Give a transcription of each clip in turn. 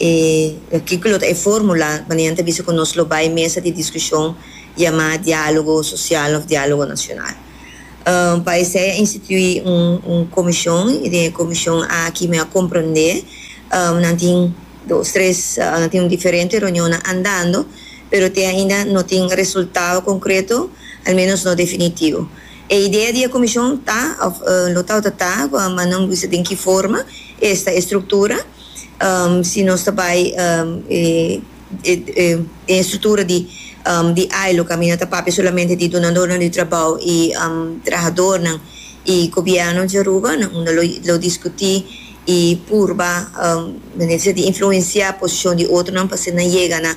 E artíkulo ta e fórmula manera nan ta bisa ku nos lo bai mesa di diskushon yamá diálogo sosial òf diálogo nashonal. Pa esei a instituí un komishon i den e komishon aki mi a komprondé nan tin dos tres nan tin diferente reunionnan andando pero te ainda no tin resultado konkreto al menos no definitivo. E idea di e komishon ta òf lo tabata ta ku a manda un bisa den ki forma esta e struktura. si nos ta bai den e struktura di di ailo kaminda ta papia solamente di dunadornan di trabou i trahadornan i gobièrnu di Aruba nan unda lo diskutí i purba mester ser di influensiá posishon di otronan pa asina yega na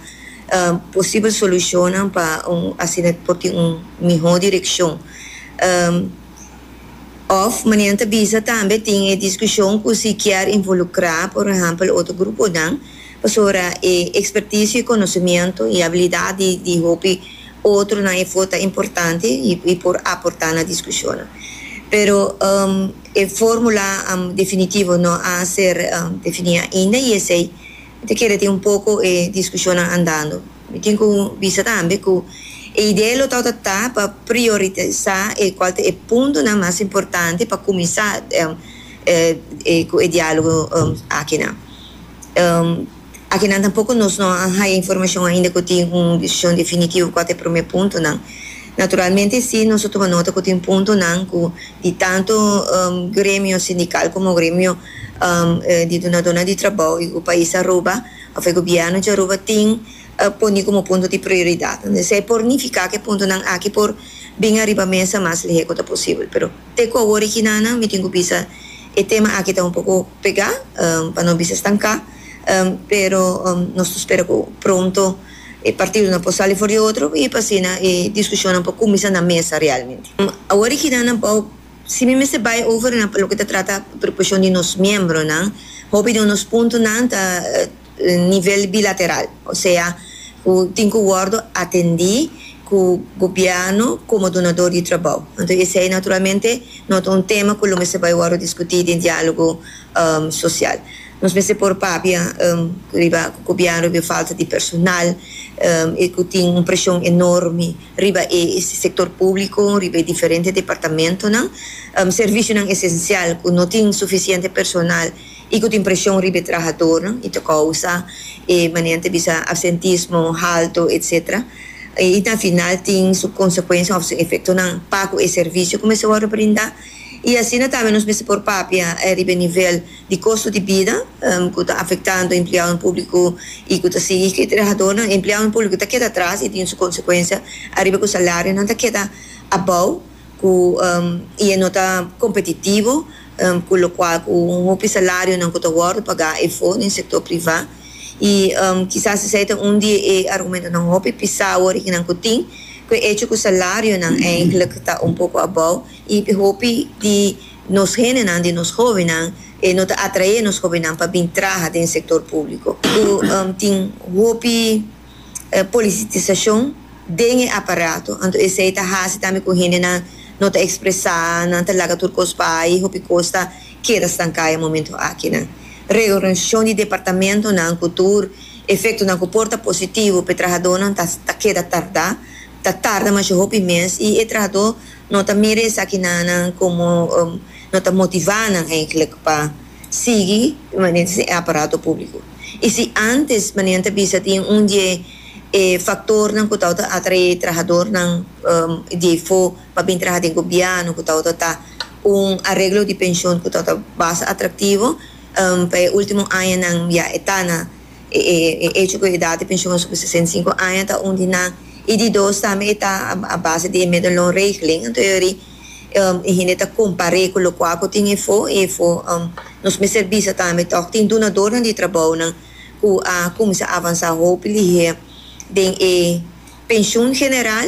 posibel solushonnan pa asina por tin un mihó direkshon. Òf, manera nan ta bisa tambe tin e diskushon ku si kier involukrá por ehèmpel otro gruponan, pasobra e ekspertisio i konosimiento i abilidat di di hopi otronan e for ta importante i por aportá na diskushonnan. Pero e fórmula definitivo no a ser definí ainda i esei ta kere tin un poko e diskushonnan andando. Mi tin ku bisa tambe ku e idea lo ta ota ta pa prioritisa e kual ta e puntonan mas importante pa kuminsá ku e diálogo akinan. Akinan tampoko nos no a haya informashon ainda ku tin un desishon definitivo kual ta e promé puntonan. Naturalmente sí nos a tuma nota ku tin puntonan ku di tantu gremio sindikal komo gremio di dunadónan di trabou i ku pais Aruba, of e gobierno di Aruba tin poni como punto di prioridad. Entonces esei por nifica cu e puntonan aki por bin ariba mesa mas leheco ta posibel. Pero te cu awor e kinanan mi tin cu bisa e tema aki ta un poco pega pa no bisa stanca pero nos ta spera cu pronto e partidonan por sali for di otro y pa asina e discusionnan por cuminsa na mesa realmente. Awor e kinanan bao Si mi mester bai over na loke ta trata preocupacion di nos miembronan, hopi di nos puntonan ta nivel bilateral, osea cu tin cu wordo atendi cu gobierno como donador di trabao. Anto esey naturalmente no ta un tema cu lo mester bai wordo discuti den dialogo social. Nos mester por papia riba cu gobierno riba falta di personal y cu tin un presion enorme riba e sector publico, riba e diferente departamentonan, servicionan esencial cu no tin suficiente personal y cu tin presion riba e trahadornan y ta causa e manera nan ta bisa absentismo halto etc. Y na final tin su consecuencianan of su efectonan pa cu e servicio cu mester worde brinda y asina tambe nos mester por papia riba e nivel di kostu di bida ku ta afektando empleadonan públiko i ku ta sigui skirti trahadónan, empleadonan públiko ta keda atras i tin su konsekuensia ariba ku salarionan ta keda abou ku i e no ta kompetitivo ku lokual ku un hopi salarionan ku ta wòrdu pagá efo den sektor privá i kisas esei ta un di e argumentonan hopi pisá wòrignan ku tin ku e echo ku salarionan enkèlèk ta un poko abou i hopi di Nos hendenan di nos hóbennan e no ta atraé nos hóbennan pa bin traha den sektor públiko ku tin hopi polisitisashon den e aparato. Anto esei ta hasi tambe ku hendenan no ta ekspresá, nan ta laga tur kos bai, hopi kos ta keda stanká e momentu akinan. Reorganisashon di departamentonan ku tur efektonan ku por ta positivo p'e trahadónan ta keda tardá, ta tarda masha hopi mes i e trahadó, No ta mira esaki nannan como no ta motivá nan eigenlijk pa sigui permanente den e aparato público. I si ántes manera nan ta bisa tin un di e factornan cu tabata atraé trahadornan di ei fo pa bin traha den Gobierno cu tabata ta un areglo di pensioen cu tabata basta atractivo, pa e último añanan ya e ta na. E e echo cu e edad di pensioen subi sesenta y cinco aña ta un di nan y di dos tambe e ta a base di e medelloonregeling enton yori e hende ta compare cu locual cu tin efo y efo nos mester bisa tambe toc tin dunadornan di trabounan cu a cuminsa avansa hopi liher den e pensioen general